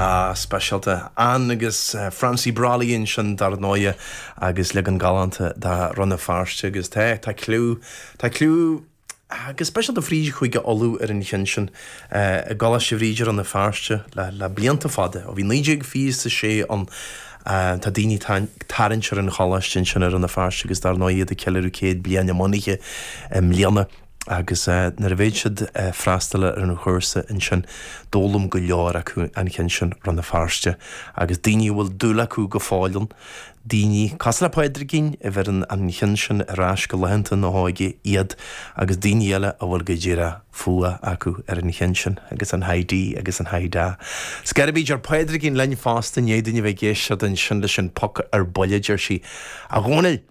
Ah, speisialta. Ann agus Francie Brolly ansin dar ndóighe agus leagan galánta de 'Rann na Feirste' agus tá, tá cliú, tá cliú go speisialta fríd Chúige Uladh ar an cheann sin. I gColáiste Bhríde, Rann na Feirste le, le blianta fada, ó bhí naoi déag fiche a sé ann, tá daoine ag tarraingt ar an choláiste ansin i Rann na Feirste agus dar ndóighe iad ag ceiliúradh céad bliain a mbunaithe i mbliana. Agus nuair a bheadh siad a' freastal ar an chúrsa ansin, d'fhoghlaim go leor acu an cheann sin, Rann na Feirste, agus daoine a bhfuil dúil acu go fóill ann, daoine, cosúil le Pádraigín, a bheireann an cheann sin ar ais go laethanta na hóige iad, agus daoine eile a bhfuil go díreach fuath acu ar an cheann sin, agus an Hi Dee agus an Hi Da. Scairby, deir Pádraigín linn fosta, i ndiaidh dúinn a bheith ag éisteacht ansin leis an bpoc ar buile, deir sí, A Dhónaill,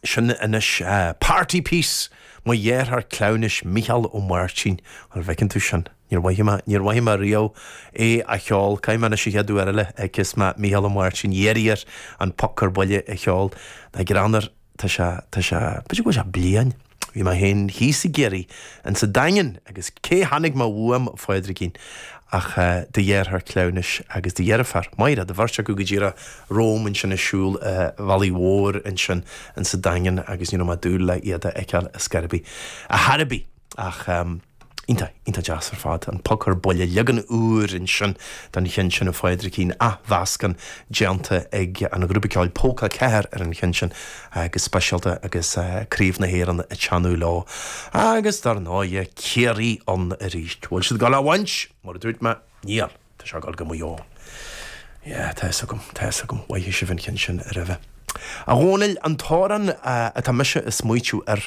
Sin anois party piece mo dheartháir cleamhnais Mícheál Ó Máirtín. An bhfeiceann tú sin? Níor mhothaigh mé, níor mhothaigh mé riamh é a cheol. Caithfidh mé anois an chéad uair eile a tchífeas mé Mícheál Ó Máirtín iarraidh air an poc ar buile a cheol. Tá greann air. Tá sé, tá sé, b'fhéidir go bhfuil sé bliain. Bhí mé féin thíos i gCiarraí insa Daingean agus cé chonaic mé uaim a Phádraigín ach do dheartháir cleamhnais agus do dheirfiúr, Máire, an bheirt acu go díreach romham ansin ag siúl a' bhealaigh mhóir ansin in sa Daingean agus ní raibh mé ag dúil le iad a fheiceáil a Scairby, a Hairby ach. Iontach, iontach deas ar fad. An poc ar buile, leagan úr ansin den cheann sin, a Phádraigín, athmheascán déanta ag an ghrúpa ceoil Polca a Ceathair ar an cheann sin, go speisialta, agus Craobh na hÉireann ag teannadh leo. Agus dar ndóighe, Ciarraí ann arís. Bhfuil siad ag dul á bhaint? Mar a dúirt mé, níl. Tá sé ag dul go Maigh Eo. Yeah, tá fhios agam, tá fhios agam. Mhothaigh sibh an ceann sin aroimhe. A Dhónaill, an t-amhrán atá mise ag smaoitiú air,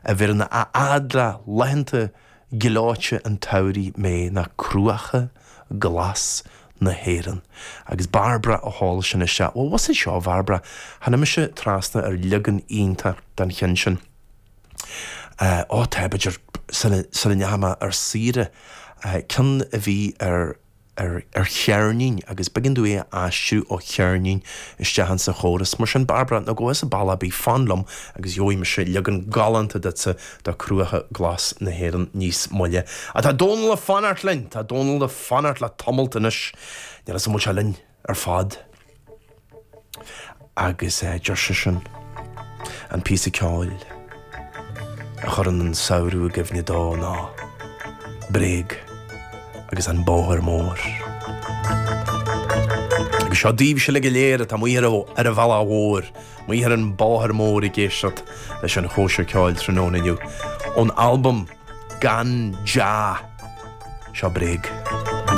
a bheireann a fhad le laethanta gleoite an tsamhraidh mé ná Cruacha glas na hÉireann. Agus Barbara a sheol sin isteach. Bhuel, muise seo, Bharbara, tháinig mise trasna ar leagan iontach den cheann sin. Ó tá, b'fhéidir sula ndeachaigh mé ar saoire, ceann a bhí ar, ar, ar cheirnín agus b'éigean dom é a aistriú ó cheirnín isteach insa chóras. Mar sin Barbara, ná gabh thusa ball ar bith, fan liom agus gheobhaidh mise leagan galánta duitsa de Cruacha Glas na hÉireann níos moille. Á tá Dónall ag fanacht linn! Tá Dónall ag fanacht le tamalt anois. Níl a fhios an bhfuil sé linn? ar fad agus deir seisean an píosa ceoil a chuireann an samhradh i gcuimhne dó ná Bréag agus an Bóthar Mór. Agus seo daoibhse uilig go léir atá amuigh ar an bhealach mhór, amuigh ar an mbóthar mór ag éisteacht leis an chóisir ceoil tráthnóna inniu. Ón albam Gan Jah, seo Bréag.